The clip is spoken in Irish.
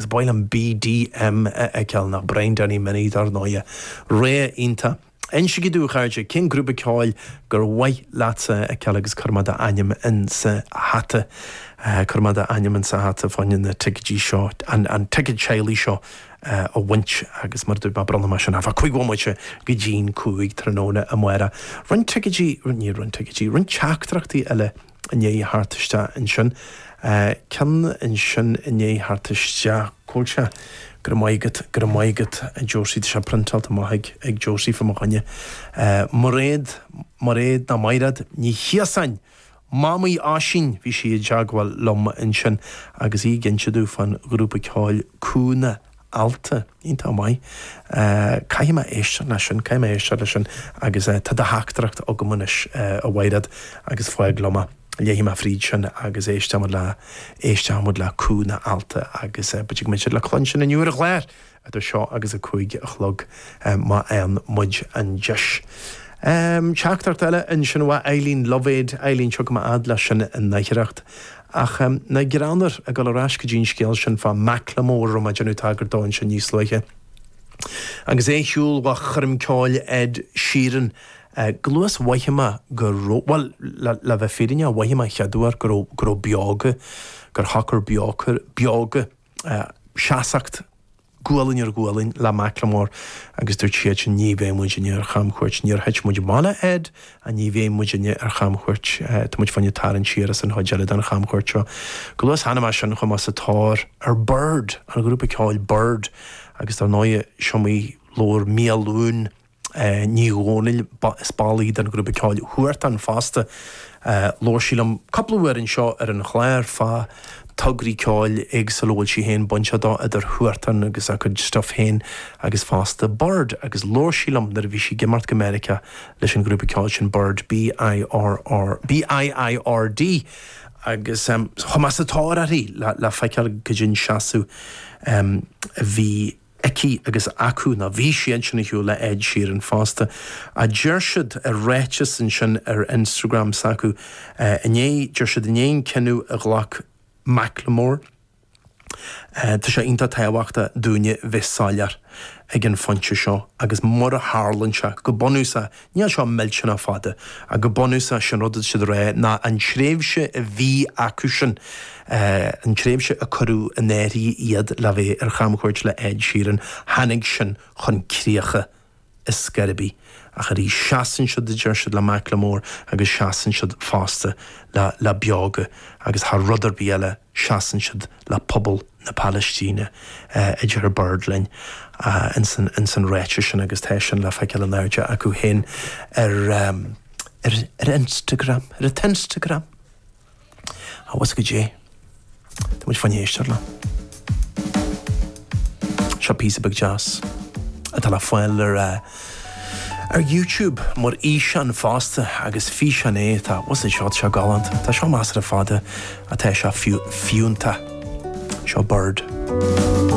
Ba mhaith liom BDM a fheiceáil ná Brian Danny Minnie, dar ndóighe. Rogha iontach. Insígí domh a chairde cén grúpa ceoil gur mhaith leatsa a fheiceáil agus cuirfidh mé d'ainm insa hata. Cuirfidh mé d'ainm insa hata fá choinne na ticeidí seo, an ticead teaghlaigh seo a bhaint agus mar a dúirt mé bronnfaidh mé sin thart fá chúig bhomaite go dtín cúig tráthnóna amárach. Roinnt ticeidí, ní roinnt ticeidí, roinnt teachtaireachtaí eile. ndiaidh theacht isteach ansin. ceann ansin i ndiaidh theacht isteach. Cá bhfuil sé, Go raibh maith agat, go raibh maith agat a Josie, tá sé priontáilte amach ag Josie fá mo choinne. Mairéad, Mairéad, ná Maighréad Ní Chiosáin! Mamaí Oisín, bhí sí i dteagmháil liom ansin agus í ag inse domh fán ghrúpa ceoil Cúna alt. Iontach maith. Caithfidh mé éisteacht leis sin, caithfidh mé éisteacht leis sin agus tá do theachtaireacht agam anois a Mhaighréad agus fág liom é. Léifidh mé fríd sin agus éistfidh muid le, éistfidh muid le cúl na h-ailt agus b'fhéidir go mbeidh siad le cluinstin inniu ar an chlár idir seo agus a cúig a chlog má fhaigheann muid an deis. Teachtaireacht eile ansin ó Eileen Lovéd, Eileen, tiocfaidh mé a fhad leis sin in aichearracht Ach ná greanntar, ag dul ar ais go dtí an scéal sin fá Macklemore a raibh mé ag déanamh tagairt dó ansin níos luaithe. Agus é ag siúl amach ó choirm ceoil Ed Sheeran chomh luath is a mhothaigh mé go raibh, bhuel, le bheith fírinneach, mhothaigh mé an chéad uair go raibh, go raibh Beoga, gur shocraigh Beoga, Beoga, seasacht. gualainn ar ghualainn le Macklemore agus dúirt siadsan ní bheidh muidinne ar chamchuairt, níor thit muid amach le Ed ach ní bheidh muidinne ar chamchuairt, tá muid fá choinne tarraingt siar as an chuid eile den chamchuairt seo. Chomh luath is a chonaic mé sin chuaigh mé sa tóir ar Biird, an grúpa ceoil Biird agus dar ndóigh is iomaí labhair Miadhachlughain Ní Dhomhnaill, is ball í den ghrúpa ceoil Huartan fosta. Labhair sí liom cúpla uair anseo ar an chlár fá tograí ceoil éagsúla a bhfuil sí féin bainteach dó, idir Huartan agus a cuid stuif féin agus fosta Biird agus labhair sí liom nuair a bhí sí ag imeacht go Meiriceá leis an ghrúpa ceoil sin Biird B, B-i-i-r-d agus chuaigh mé sa tóir uirthi le feiceáil goidé an seasamh a bhí. aici agus acu nó bhí siadsan ar shiúl le Ed Sheeran fosta, a deir siad i ráiteas ansin ar Instagram s'acu inné. Deir siad i ndiaidh an cinneadh a ghlac Macklemore tá sé iontach tábhachtach dúinne bheith soiléir ag an phointe seo agus mar a tharlaíonn sé, go bunúsach Níl seo millteanach fada. Go bunúsach, is é an rud atá siad a rá ná an tréimhse a bhí acusan, an tréimhse a cuireadh in áirithe iad le bheith ar chamchuairt le Ed Sheeran, tháinig sin chun críocha ar scor ar bith. Ach arís, seasann siad, a deir siad, le Macklemore agus seasann siad fosta le Beoga agus thar rud ar bith eile, seasann siad le pobal na Palaistíne, a deir Bird linn ins an ráiteas sin agus tá sin le feiceáil in airde acu féin ar Instagram, ar a t-Instagram. Á, bhfios go dtí. Tá muid ag éisteacht leo. Seo píosa beag deas atá le fáil ar. Ar YouTube mar fhíseán fosta agus físeán é atá, what's it, shot seo galánta. Tá seo measartha fada ach tá sé fiúntach. Seo Bird.